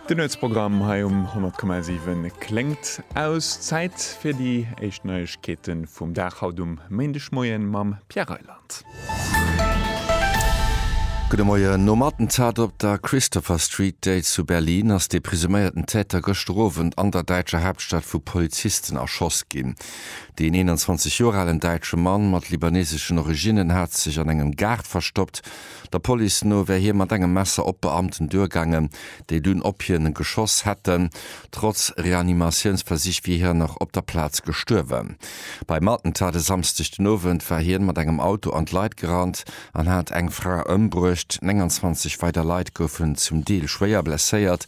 Den Nuetsprogramm hei um 100,7 kléngt aus. Zäit fir déi éischt Neiegkeete vum Dag haut um Méindegmoie mam Pierre Reyland. Gudde Moien. Nom Attentat op der Christopher Street Day zu Berlin ass dee presuméierten Täter gëschter Owend an der däitscher Haaptstad vu Polizisten erschoss ginn. Deen 21 Joer alen däitsche Mann mat libaneseschen Originnen hat sech an engem Gaart verstoppt, Der Police no wär hie mat engem Messer op d'Beamten duergaangen, déi dunn op hien geschoss hätten. Trotz Reanimatiounsversich wier hien nach op der Plaz gestuerwen. Beim Attentat e Samsdeg den Owend war hien mat engem Auto an d'Leit gerannt an hat eng Fra ëmbruecht. 29 weider Leit goufen zum Deel schwéier blesséiert.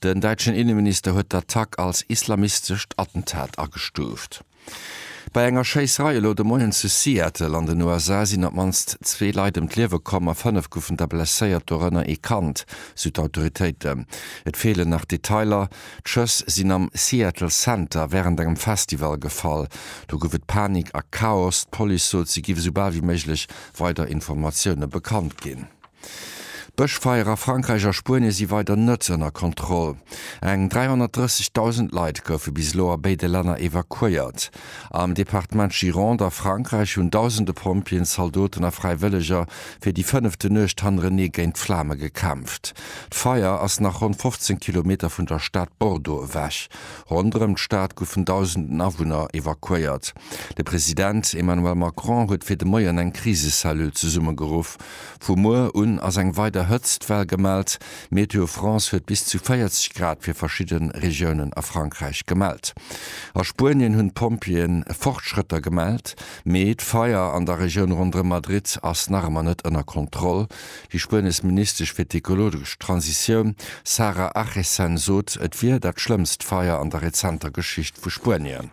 Den däitschen Inneminister huet d'Attack als islamistescht Attentat agestuuft. Bei enger Schéisserei elo de Moien zu Seattle an den USA sinn op d'mannst zwee Leit ëm d'Liewe komm a fënnef goufen da blesséiert, dorënner ee Kand, sou d'Autoritéiten. Et feelen nach Detailer. D'Schëss sinn am Seattle Center wärend engem Festival gefall. Do gouf et Panik a Chaos. D'Police sot, si géif esou bal wéi méiglech weider Informatioune bekannt ginn. D'Bëschfeier a Frankräich a Spuenie si weider net ënner Kontroll. Eng 330.000 Leit goufe bis elo a béide Länner evakuéiert. Am Departement Gironde a Frankräich hunn dausende Pompjeeën, Zaldoten a Fräiwëlleger fir déi fënnefte Nuecht hannerenee géint d'Flame gekämpft. D'Feier ass nach ronn 15 Kilometer vun der Stad Bordeaux ewech. Ronderëm d'Stad goufen dausenden Awunner evakuéiert. De President Emmanuel Macron huet fir de Moien eng Krisecellule zesummegeruff, Vu muer un ass eng weider Hëtztwell gemellt. Météo France huet bis zu 40 Grad fir verschidde Regiounen a Frankräich gemellt. A Spuenien hunn d'Pompjeeën Fortschrëtter gemellt, mee d'Feier an der Regioun ronderëm Madrid ass nach ëmmer net ënner Kontroll. Déi spuenesch Ministesch fir d'ekologesch Transitioun Sara Achesen sot, et wier dat schlëmmst Feier an der rezenter Geschicht vu Spuenien.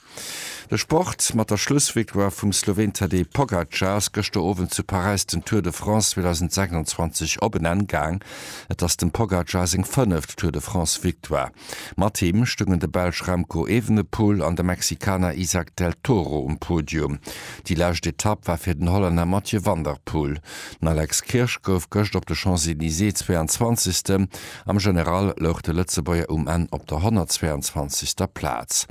De Sport, Mat der Schlussvictoire vum Sloween Tadej Pogacar ass gëschter Owend zu Paräis den Tour de France 2026 op en Enn gaang. Et ass dem Pogacar seng fënneft Tour de France-Victoire. Mat him stoungen de Belsch Remco Evenepoel an de Mexikaner Izack del Toro um Podium. Déi lescht Etapp war fir den Hollänner Mathieu van der Poel. Den Alex Kirsch gouf gëscht op de Champs-Elysées 22. Am General louch de Lëtzebuerger um Enn op der 122. Plaz.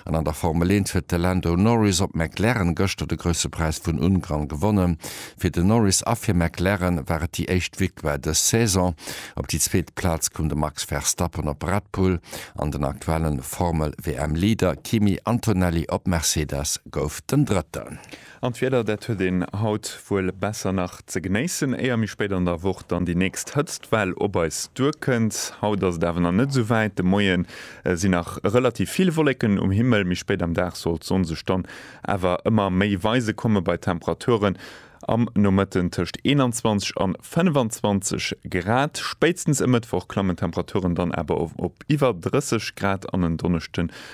An an der Formel 1 huet de Lando Norris op McLaren gëschter de Grousse Präis vun Ungarn gewonnen. Fir de Norris a fir McLaren war et déi éischt Victoire dës Saison. Op déi zweet Plaz koum de Max Verstappen op Red Bull an den aktuelle Formel-WM-Leader Kimi Antonelli op Mercedes gouf den Drëtten. An d'Wieder, dat huet een haut wuel besser nach ze genéissen, éier méi spéit an der Woch dann déi nächst Hëtztwell op eis duerkënnt. Haut ass et awer nach net sou wäit, de Moie sinn nach relativ vill Wolleken um Himmel, méi spéit am Dag soll d'Sonn sech dann awer ëmmer méi weise komme bei Temperaturen am Nomëtten tëscht 21 an 25 Grad. Spéitstens e Mëttwoch klammen d'Temperaturen dann awer op iwwer 30 Grad an en Donneschde